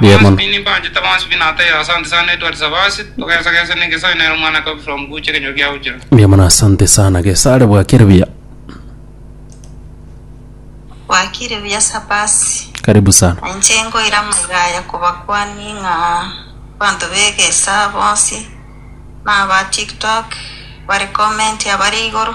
Riamolo. Riamolo asante sana gesare bwakire buya. Bwakire buya Sabasi. Karibu sana. Inche ngoira amagaya kobakwania ng'a abanto b'egesaa bonsi na aba tiktok bare comment abare igoro.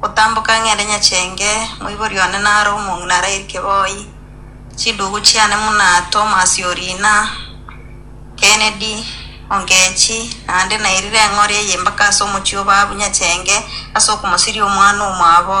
Gotamboka ng'ende nyachenge, moibori one nare omong'ina arairike boi. Chidugu chiane buna Tomasi o riina Kennedy, Ongechi, naende nairire eng'oria ey'embaka ase omochie o baabu nyachenge ase okomosiria omwana omwabo.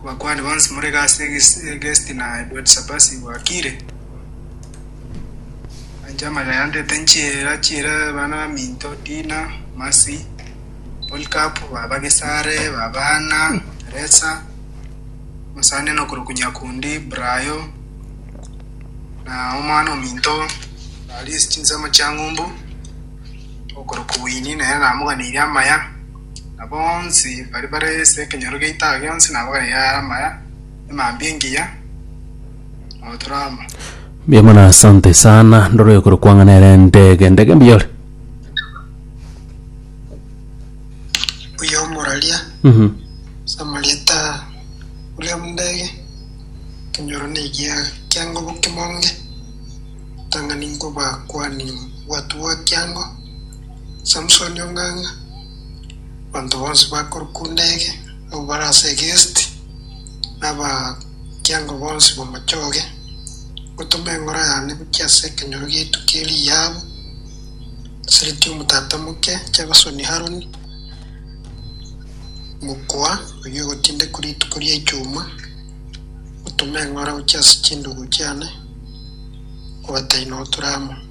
Abakuani bonsi more gasi egesti na Ebuati-Sabasi gwakire, ancha amaya yandete nchiera chiera abana baminto, Dina, Masi, Polikapu, baba Gesare, baba Hana, Resa, mosani nokorokwa Nyakundi, Brayo, na omwana ominto arie chinsemo chia ng'umbu, okorokwa Wini, nere namoganeirie amaya. na bonsi baria bare ase ekenyoro gia itaga gionsi nabo bagaiga amaya emambia engiya notorama. Mbuya mono asante sana ndoro ekoro kwanga nere ndege ndege mbiyore Mbuya omoraria Mhm. samarieta William Ndege kenyoro negia kiangobu kimonge tang'ani nkobakwani gwatugwa kiango Samsoni ong'ang'a, abanto bonsi bakorukunda ege, abwo bare ase egesti, na abakiango bonsi bamochoge, ngotoma engoro yane gochia ase ekenyoro giaitu ki'eriabu, Siriti omotata omoke, Jabasoni Haroni, mokoa oyio ogotindekwa rituko ria echuma, ngotoma engoro gochia ase chindugu chiane, kobataina oturamo.